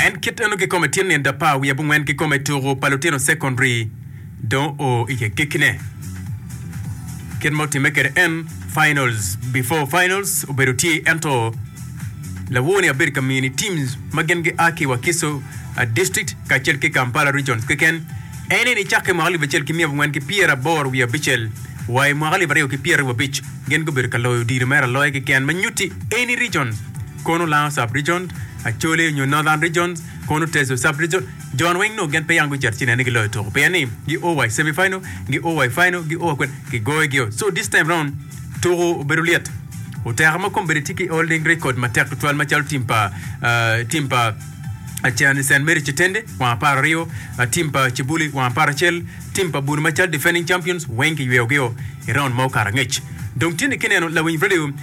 En kit eno kikome tye nindo apar wiye abongwen kikome tuku pa lutino secondary dong o i agekkine. Kit ma otimme kede en finals before finals obedo tye ento lawo ni abedo ka mini teams ma gin gi a ki Wakiso uh, district kacel ki Kampala regions keken. En eni cake i mwaka alip acel ki miya abongwen ki pyera aboro wiye abicel wa i mwaka alip aryo ki pyera wiye abic gin gubedo ka loyo odiro mere aloya keken ma nyuti eni regions Kono Lango Sub-Region, Acholi nyo Northern Region, kono Teso Sub-Region, jon weng nongo gin peya gucito ci nen ni giloyo tuko pien ni gi o wa i semi final, gi o wa i final, gi o wa kwene, kigoyo gi o. So this time round tuko obedo lyet, oteka ma kome bene tye ki holding record matek tutwal macalo team pa team pa Cherani Saint Mary Kitende wang apar aryo, team pa Kibuli wang apar acel, team pa Buni macalo defending champions weng kiyweyo gi o i round ma okato angec. Dong tye ni kineno lawiny radio.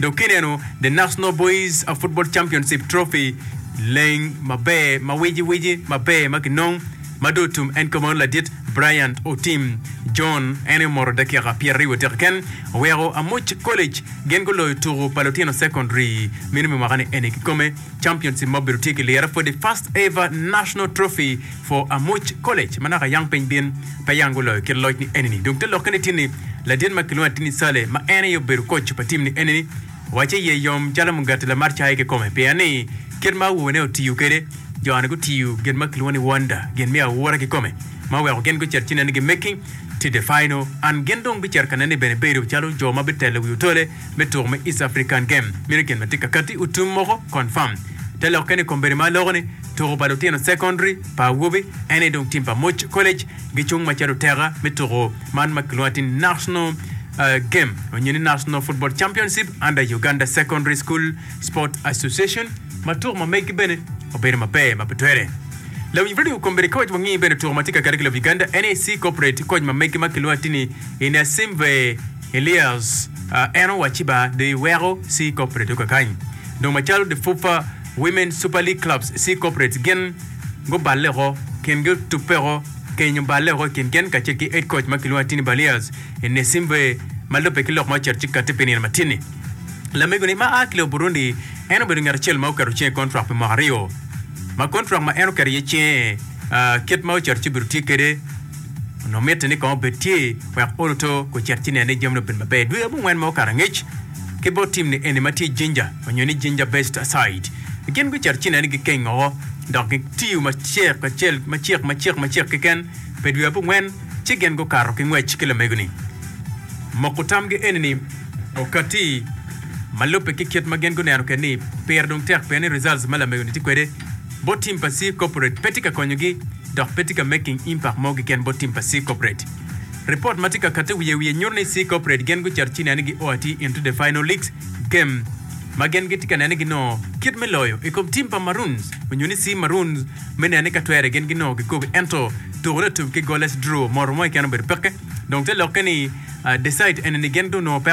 Dok kineno The National Boys Football Championship Trophy, leng maber ma wiciwici maber ma kinong ma dong otum en kome wano ladit Bryant Otim John en aye omoto dakika pyeraryo adek keken oweko Amuc College gin guloyo tuku pa lutino secondary meno me mwaka ni eni kikome championship ma obedo tye ki lira for the first ever national trophy For Amuc College ma naka yam piny bin pe yang guloyo kit loc ni enini. Dong te lokke ni tin ni ladit ma kilwongo ni Atini Saleh ma en aye obedo koc pa tim ni enini wacce iye yom calo mugati lamat cayi kikome pien ni kit ma awobi ne otiyo kede jo ni gutiyo gin ma kilwongo ni wonder gin me aura kikome ma oweko gin gucito ci nene gi making to the final and gin dong bicito ka nene bene bedo calo jo ma bitelo wi otole me tuko me East African Game mito gin ma tye ka katti otum moko confirm. Te lokke ni kombeddi ma loko ni tuko pa lutino secondary pa awobe en aye dong tim pa Moch College gicung macalo teka me tuko man ma kilwongo atir ni National Game onyo ni National Football Championship under Uganda Secondary School Sport Association ma tuko ma megi bene obedo maber ma pe twere. Lawiny Radio kombeddi ka waco wangi bene tuko ma tye ka katti ki lobo Uganda NAC Corporate koc ma megi ma kilwongo atir ni Inasimve Elias, a Eno wa Ciba de weko Sea Corporate yo kakany. Dong macalo de FUFA Women Super League Clubs Sea Corporates gin guballe oko, kingi otubbe oko keny oballe oko i kin gen kacel ki Head Coach ma kilwongo ni Tini Balias i Nesimbe ma lubbe ki lok ma ocito ci kati pi nino ma tye-ni. Lamegoni ma a ki lobo Burundi en obedo ngat acel ma oketo cinge i kontrak pi mwaka aryo ma kontrak ma en oketo iye cinge a kit ma ocito ci obido tye kede Onongo mitte ni kong obed tye wek olo to kun cit ci nen ni jamine obedo maber. Dwe abongwen ma okato angec ki bot tim ni eni ma tye Ginger onyo ni Ginger Best Aside, gin gucito ci nen ni gikeng oko dok gitiyo macek acel macek macek macek keken pe dwe abongwen ci gin gukato ki ngwec ki lamego ni. Moko tamgi eni ni okati ma lubbe ki kit ma gin guneno kede ni pire dong tek pien ni results ma lamego ni tye kwede bot tim pa Sea Corporate pe tye ka konyogi dok pe tye ka making impact mo keken bot tim pa C Corporate. Report ma tye ka katte wiye wiye nyuto ni C Corporate gen gucito ci nene gio atir into the final league game ma gen gitye ka nene ginongo kit me loyo i kom tim pa Maroons onyo ni C Maroons me nene ka twere gen ginongo kikogi ento tukone otum ki goalless draw moto mo keken obedo peke dong te lokke ni decide ene ni gen dong onongo pe